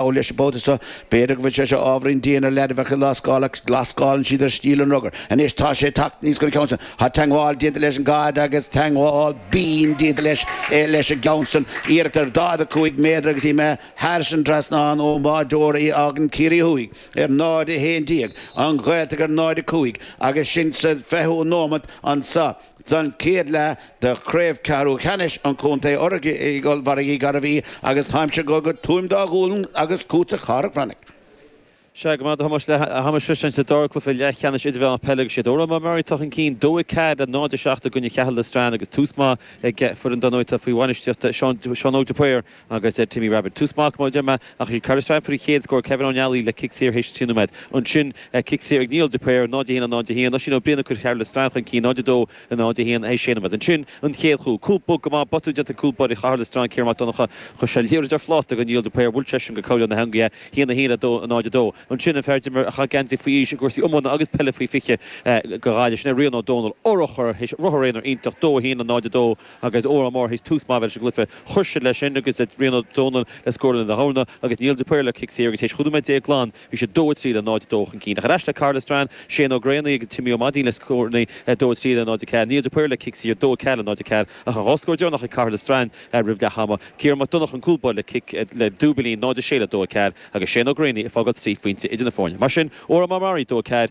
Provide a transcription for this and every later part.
Dar leis an bpota seo, b'fhéidir go bhfuil sé seo ábhairín dian ar lead a bheadh ag lascáil, ach lascálann siad ar stíl an rugair. Anois, tá sé tagtha aníos chun an ceann san. Tá teagmháil déanta leis an gcaid agus teagmháil bhinn déanta leis leis an gceann san. Iarracht ar 45 méadar agus í imithe thairis an trasnán ón bháideoir i fágann Ciarraí Thuaidh ar 0:11, an Ghaeltacht ar 0:05 agus sinn sa 20ú nóimint anso. San chéad leath de Chraobh Ceathrú Cheannais an Chontae urraithe ag Ollmhargaí Gairbhí agus téimis go go Tuaim Dá Ghualann agus chugat a Chárthaigh Bhreathnaigh. Sea, go raibh maith agat a Thomáis leath ama freisin sa dara cluiche leathcheannais idirmheánach peile agus is iad Oranmore Maree atá chun cinn, 2-4 le 0-7 i gcoinne Caherlistrane agus tús maith ag foireann an-óg atá faoi bhainistíocht Seán Óg de Paor. agus Timmy Rabbitte. Tús maith, mar a deir mé ach is iad Caherlistrane a fuair an chéad scór Kevin Ó Nealaigh le cic saor théis trí nóiméad. Ansin cic saor ag Niall de Paor, 0-1 le 0-1. Oisín Ó Briain ag cur Caherlistrane chun cinn, 0-2 le 0-1 théis sé nóiméad. Ansin an chéad chúl. Cúl bog go maith, botún déanta ag cúl báire Caherlistrane Ciarán Mac Donnacha. Chuir sé an liathróid ar phláta go Niall de Paor, bhuail seisean go cúl na heangaí é, 1-1 le 0-2. Ansin an fear d'imir a chaith geansaí faoi aois i gcúrsaí iomána agus peile faoi 20 do Ghaillimh, sin é Rian Ó Dónaill, urchar théis ruathar aonair iontach 2-1 le 0-2. agus Oranmore théis tús maith leis an gcluiche. Chuir siad leis sin agus Rian Ó Dónaill le scór lena dhorna agus Niall de Paor le cic saor agus tar éis chúig nóiméad déag glan bhí siad 2-3 le 0-2 chun cinn. Ach ar ais le Caherlistrane, Shane Ó Graonaigh agus Timmy Ó Maidín le scóranna 2-3 le 0-4. Niall de Paor le cic saor 2-4 le 0-4 ach an dhá scór deireanach ag Caherlistrane roimh leath ama, Ciarán Mac Donnacha an cúl báire le cic le dúibilín 0-6 le 2-4 agus Shane Ó Graonaigh ag fágáil trí phointe idir na foirne. Mar sin, Oranmore Maree 2-4,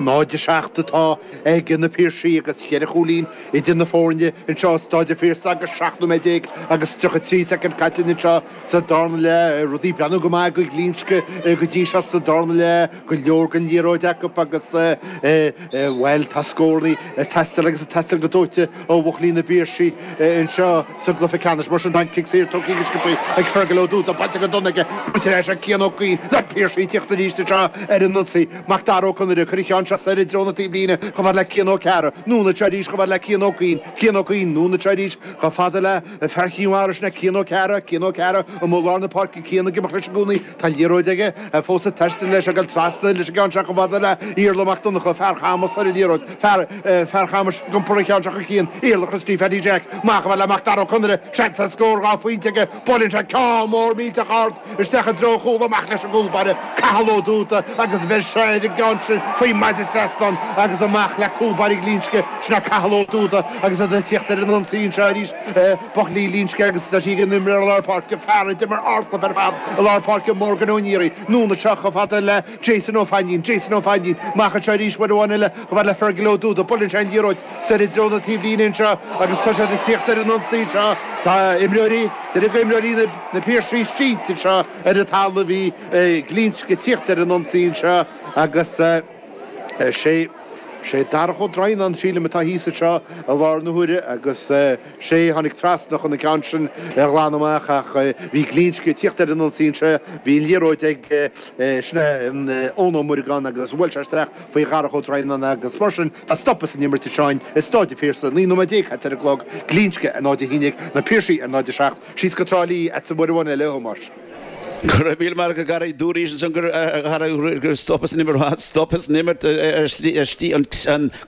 0-7 atá ag Na Piarsaigh agus cheithre chúilín idir na foirne anseo i Stáid an Phiarsaigh agus 17 nóiméad agus 33 soicind caite anseo sa darna leath. Rudaí ag breathnú go maith do Ghlinsce go dtí seo sa darna leath, go leor den liathróid acu agus bhuel tá scórannaí ag teastáil agus ag teastáil go dóite ó Bhuachaillí na bPiarsaí anseo sa gcluiche ceannais. Mar sin, tá an cic saor tógtha go sciobtha ag Fergal Ó Dúda, baint aga dona aige, baint ar ais ag Cian Ó Cuinn, na Piarsaí ag tíocht arís anseo ar an ionsaí. Macdara Ó Conaire, ag cur an cheann seo soir i dtreo na taobhlíne, chomh fad le Cian Ó Cearra, anonn anseo arís chomh fad le Cian Ó Cuinn, Cian Ó Cuinn, anonn anseo arís chomh fada le. Fear Chinn Mhara sin é Cian Ó Cearra Cian Ó Cearra ó lár na páirce Cian ag imeacht leis i gcónaí tá an liathróid aige fós ag taisteal leis ag dul trasna leis an gceann seo chomh fada le hIarla Mac Donnacha Fear Chamais ar an liathróid Fear Chamais ag iompar an cheann seo chun cinn Iarla Christy Phaddy Jack amach chomh fada le Mac Dara Ó Conaire seans ar scór dhá phointe aige buaileann sé ceann mór millteach ard Isteach i dtreo an chúil amach leis an gcúlbaire Cathal Ó Dúda agus bheir sé ar an gceann sin faoin maide trasnáin agus amach le cúlbaire Ghlinsce. Sin é Cathal Ó Dúda agus iad ag tíocht ar an ionsaí anseo arís. Buachaillí Ghlinsce agus tá sí ag an imreoir lár páirce, fear a d'imir ardchluiche ar fad i lár páirce, Morgan Ó Neary. Anonn anseo chomh fada le. Jason Ó Fainnín, Jason Ó Fainnín, amach anseo arís, uair amháin eile, a bhain le Fergal Ó Dúda. Buaileann sé an liathróid soir i dtreo na taobhlíne anseo agus tá siad ag tíocht ar an ionsaí anseo. Tá imreoirí, duine go imreoirí na Piarsaigh sínte anseo ar an talamh, bhí Glinsce ag tíocht ar an ionsaí anseo agus sé, sé Darach Ó Droighneán, sílim, atá thíos anseo i láthair na huaire agus sé tháinig trasna chun an ceann sin a ghlanadh amach ach bhí Glinsce ag tíocht ar an ionsaí anseo, bhí an liathróid ag. Sin é Eoin Ó Muireagáin agus bhuail sé isteach faoi Dharach Ó Droighneáin agus mar sin tá stop as an imirt anseo i Stáid an Phiarsaigh, naoi nóiméad déag caite ar an gclog, Glinsce ar 0 a haon ag Na Piarsaigh ar 0, 7, síos go Trá Lí chugatsa uair amháin eile a Thomáis. Go raibh míle maith agat Garry. Dúraís ansan go raibh stop as an imirt. Tá stop as an imirt ar shlí an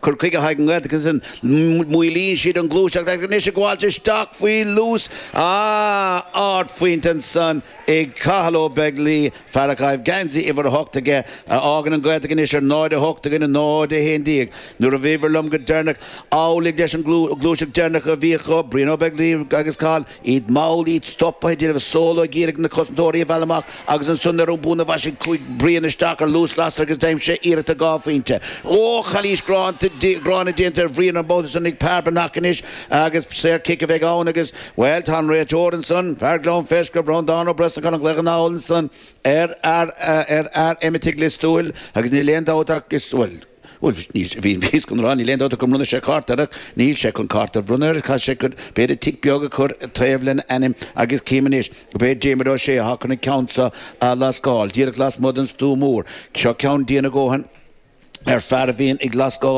cur chuige atá ag an nGaeltacht ansan. Maolaíonn siad an ghluaiseacht ach anois ag gabháilt isteach faoi luas, ah, ardphointe ansan. ag Cathal Ó Beaglaoi, fear á chaitheamh geansaí uimhir a hocht aige, a fhágann an Ghaeltacht anois ar 0 8 i gcoinne 0 11. Nuair a bhíobhair liom go deireanach, amhlaidh leis an ghluaiseacht deireanach a bhí acu, Brian Ó Beaglaoi agus Cathal, iad mall, iad stoptha, ag déanamh solo ag iarraidh na cosantóirí a mhealladh amach agus ansan ar an mbonn a mhaisigh Brian isteach ar luas lasrach agus d'aimsigh sé iarracht ar dhá phointe. Óch! Calaois ghránna déanta ar Bhrian an babhta san ag Peadar Breathnach anois agus saor cic a bheidh ann agus Bhuel, tá an réiteoir ansan, fear Ghleann Fleisce, Breandán Ó Brosnacháin ag glaoch anall ansan ar fhear, ar fhear Eiméitigh Lios Tuathail agus níl aon dabht ach is, bhuel, bhuel, níl, bhí, bhíos chun a rá, níl aon dabht ach go mbronnfaidh sé cárta air ach níl sé chun cárta a bhronnadh air, tá sé chun, b'fhéidir tic beag a chur taobh lena ainm agus cím anois gurb é Diarmuid Ó Sé atá chun an ceann seo a lascáil, díreach lasmuigh den stua mór. Seo ceann dian a dhóthain ar fear a bhíonn ag lascáil.